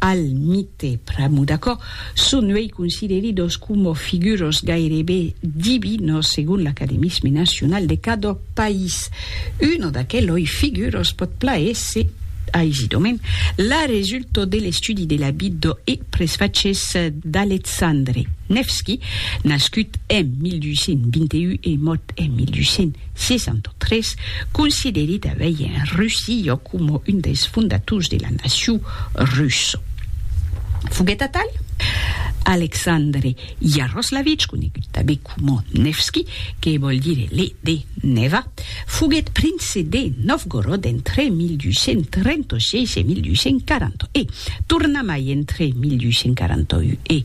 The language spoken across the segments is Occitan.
al mite pr'amu d'aquò, son uei consideridos coma figuros gairebe divinos segon l'academisme nacional de cada país. Uno d'aqueloi figuros pòt plaéser aisidament la resulta de l'estudi de la vida e presfachés d'Alexandre Nevski, nascut en 1221 e mòrt en 1200. 63, consideri tanbei en Russillo coma un dels fondators de la nacion russa. Foguèt atal Alexandre Iaroslavich, conegut tanbei coma Nevski, que vòl dire le de Neva, foguèt prince de Novgorod entre 1236 e 1240 e, tornamai entre 1241 e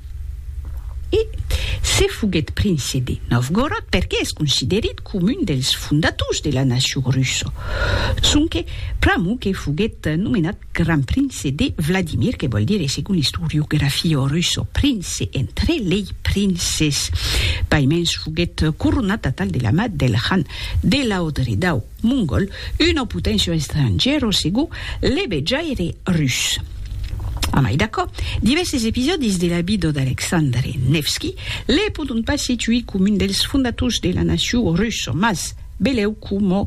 E se foguèt prince de Novgorod perque es considerit com un dels fondators de la nacion russa, sonque pr'amor que foguèt nomenat Gran Prince de Vladimir, que vòl dire, segon l'istoriografia russa, prince entre lei princes. Paimens foguèt coronat atal de la mat del Khan de Laodredau. Mongol, una potencia estrangièra o segur l'ebejaire rus. A mai d'aquò, divèrses episòdis de la vida d'Alexandre Nevski le pòdon pas situir coma un dels fondators de la nacion russa, mas belèu coma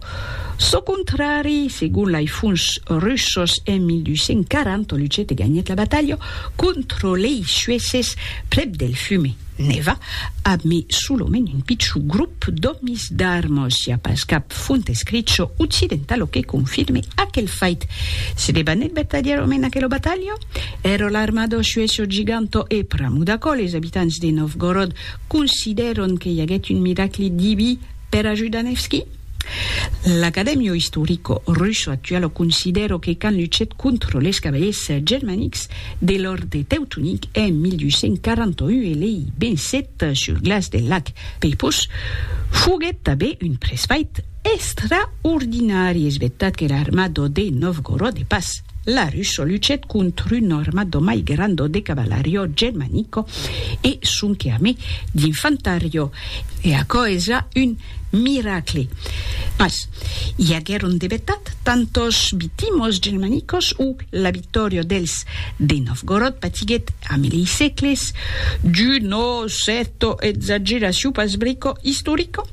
çò contrari, segon lai fons russos en 1240 Lucete ganhèt la batalha contra lei Suèces prèp del Fume. Neva, ab mi solomènt un pichon grop d'òmis d'armos, i a pas cap font escricho occidentalo que confirme aquel fait. Se debanèt vertadièrament aquelo batalhon? Ero l'armado suesso giganto e pramo d'aquò les abitants de Novgorod considèron que i aguèt un miracli diví per ajudar Nevski? L'Academio Historico Russo Actualo considero que quand luchèt contra les cavaliers germanics de l'Orde Teutonic en 1841 e lei vencèt sul glaç del lac Peipus, foguèt tanben un presfait extraordinari, es vertat que l'armado de Novgorod de pas la Russo luchèt contra un armado mai grando de cavalario germanico e sonque amé d'infantariò, e aquò es ja un Miracle! Mas i aguèron de vetat tantos vitimos germanicos o la victòria dels de Novgorod patiguèt a mil i sècles d'uno cèrto exageraciu pas brico istorico?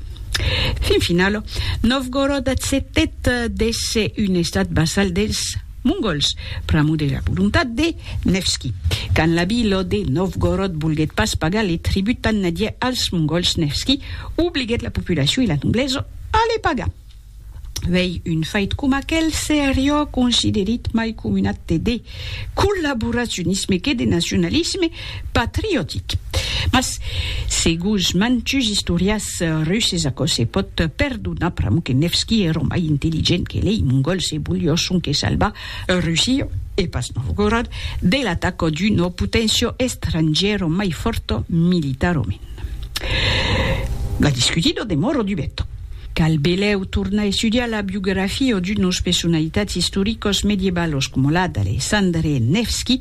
Fin finalo, Novgorod accetèt d'èsser un estat vassal dels. Mongols, pr'amor de la volontat de Nevski. Quand l'abi Lo de Novgorod volguèt pas pagar le tribut tan nadiè als Mongols, Nevski obliguèt la populacion e la noblesa a le pagar. Uèi, un fait coma aquel seriá considerit mai coma un acte de collaboracionisme que de nacionalisme patriotic. Mas, seguns mantuns istorians, Eth Russes aquò se pòt perdonar pr'amor que Nevski èra mai intelligent que lei Mongols e volió sonque salvar Russia, e pas Novgorod, de l'ataca d'una poténcia estrangièra mai fòrta militarament. La discutida demòra dubeta. Cal belèu tornar estudiar la biografia d'unas personalitats istoricas medievalas coma la d'Alexandre Nevski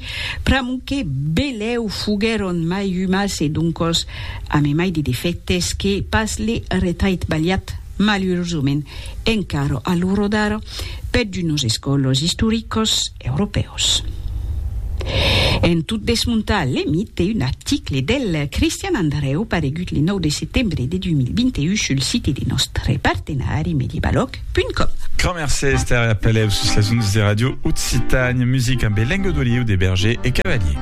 pr'amor que belèu foguèron mai umas e doncas A me mai de defèctes que pas le retait balhat, malurosament, encara a l'ora d'ara, per d'unos escòlos istoricos europèus. En tot desmontar le mite, un article del Cristian Andreu paregut le 9 de setembre de 2021 sul site de nòstre partenari mediebaloc.com. Grand mercé Esther e apelèu sus las ondas de Radio Occitània Music ambe lenga d'oliu de Berger e Cavalier.